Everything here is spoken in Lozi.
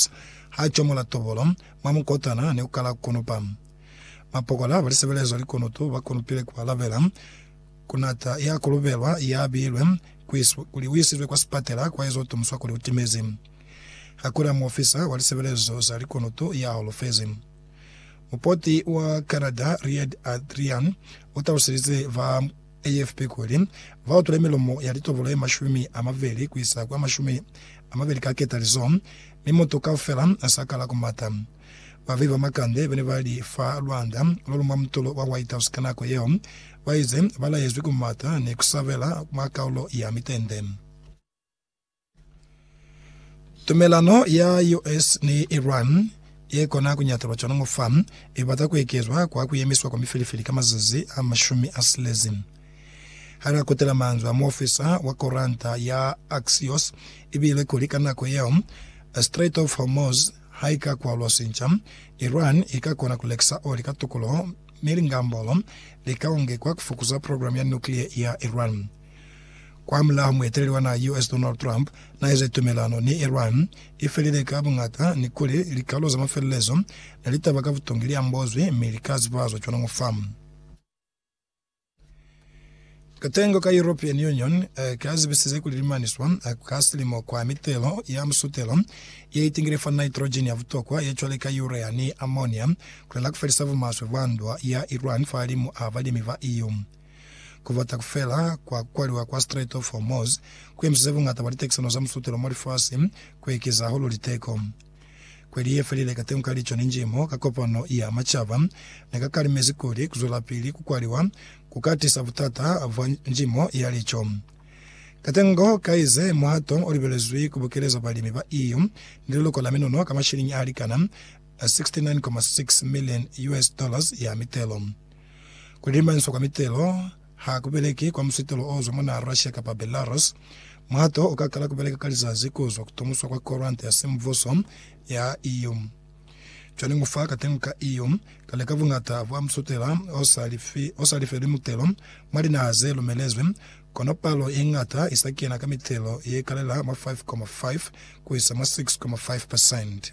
Moses ha comola tobolo mwa mukotana ni ku kala kunupa. Mapokola ba lisebelezo likunutu ba kunupile ku alabela ku nata ya kulubelwa ya bilwe kuli u isizwe kwa sipatela kwa ezo tumuswa kuli u timezi. Ha ku na muofisa wa lisebelezo za likunutu ya holofezi. Mupoti wa Canada Reed Adrian u taluselize ba AFP kuli, Va utule milomo ya litobolo ye mashumi a mabeli ku isa kwa mashumi a mabeli ka ketalizo, mi mutu kaufela a sa kala ku mata. Babehi ba makande ba ne ba li fa lwanda lo lu mwa mutulo wa White House ka nako yeo, ba ize ba laezwi ku mata ni ku sabela mwa kaulo ya mitende. Tumelano ya US ni Iran ye kona ku ñatalwa cwalo ngo fa, i bata ku ekezwa kwa ku yemiswa kwa mifilifili ka mazazi a mashumi a silezi. Ha na kutela manzwi a muofisa wa koranta ya Axios, i bile kuli ka nako yeo Strait of Hormuz ha i ka kwalwa sinca, Iran i ka kona ku lekisa oli ka tukuluho mi lingambolo li ka ongekwa ku fukuza programu ya nuclear ya Iran. Kwamulaho mueteleli wa naha ya US Donald Trump naeze tumelano ni Iran ifelile ka buñata ni kuli likalo za mafelelezo ne litaba ka butongi liambozwi mi lika zibazwa cwana ngo fa. Katengo ka European Union ka zibisize kuli limaniswa ka silimo kwa mitelo ya musutelo ye itingile fa nitrogen ya butokwa ye cwale ka urea ni ammonia kulela kufelisa bumaswe bwa ndwa ya Iran fahalimu a balimi ba EU. Kubata kufela kwa kukwaliwa kwa Strait of Hormuz kuemisize bungata bwa litekisano za musutelo mwa lifasi kuekeza hahulu liteko. Kweli yefelile katengo ka lico ni njimo ka Kopano ya Macaba nekakalimezi kuli kuzwelapili kukwaliwa kuka tisa butata bwa njimo ya lico. Katengo kaize muhato olibelezwi kubukeleza balimi ba EU ni leloko la minono ka mashilingi alikana 69.6 million US dollars ya mitelo. Ku dimaniswa kwa mitelo ha ku beleki kwa musitolo o zwa mwa naha Russia kapa Belarus. Muhato u ka kala ku beleka ka lizazi ku zwa ku tomuswa kwa koranta ya Semvuso ya EU. Cwale mu fa ka tengo ka EU, kale ka buñata bwa musutela o sa lifi, o sa lifelwi mutelo mwa linaha ze lumelezwi, kono palo ye ñata i sa kena ka mitelo ye kalela mwa 5,5 ku isa mwa 6,5 pasente.